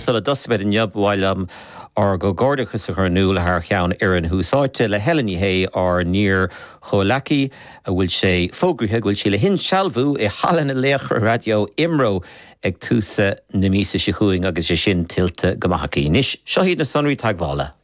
Sula dtosaimid inniu, ba mhaith liom ár gcomhghairdeachas a chur in iúl thar cheann fhoireann Thús Áite le Helen Ní Shé, ár n-iar-chomhghleacaí, a bhfuil sé fógraithe go bhfuil sí le hinsealbhú i Halla na Laochra Raidió Imro ag tús na míosa seo chugainn agus é sin tuillte go maith aici. Anois, seo iad na sonraí teagmhála.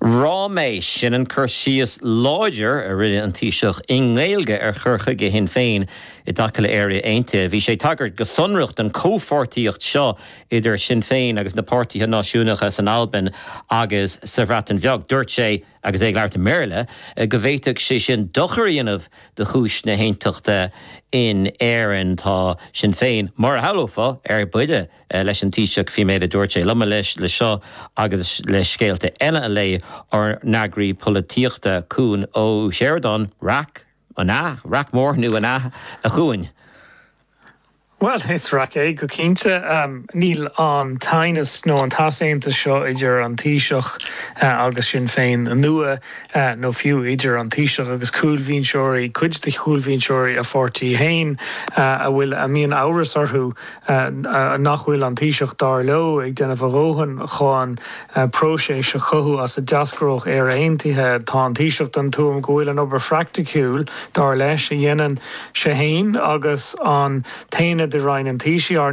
Ráiméis, sin an cur síos láidir a rinne an Taoiseach i nGaeilge ar chur chuige Shinn Féin i dtaca le Éire Aontaithe. Bhí sé ag tagairt go sonrach don chomhpháirtíocht seo idir Sinn Féin agus na páirtithe náisiúnacha san Albain agus sa Bhreatain Bheag. Dúirt sé, agus é ag labhairt i mBéarla, go bhféadfadh sé sin dochar a dhéanamh do chúis na haontachta in Éirinn. Tá Sinn Féin, mar a shamhlófá, ar buile. leis an Taoiseach faoin méid a dúirt sé. Liom leis seo agus le scéalta eile a phlé ár n-eagraí polaitíochta, Cuan Ó Seireadáin, raic, an ea? Raic mhór nua, an ea, a Chúain? Bhuel, is raic é, go cinnte. Níl an t-aighneas nó an t-easaontas seo idir an Taoiseach agus Sinn Féin nua, nó fiú idir an Taoiseach agus cúlbhinseoirí, cuid de chúlbhinseoirí a pháirtí fhéin, a bhfuil, a mbíonn amhras orthu nach bhfuil an Taoiseach, dar leo, ag déanamh a dhóthain chun próiseas a chothú as a n-eascródh Éire Aontaithe. Tá an Taoiseach den tuairim go bhfuil an obair phraicticiúil, dar leis, a dhéanann sé fhéin agus an t-aonad i Roinn an Taoisigh, ár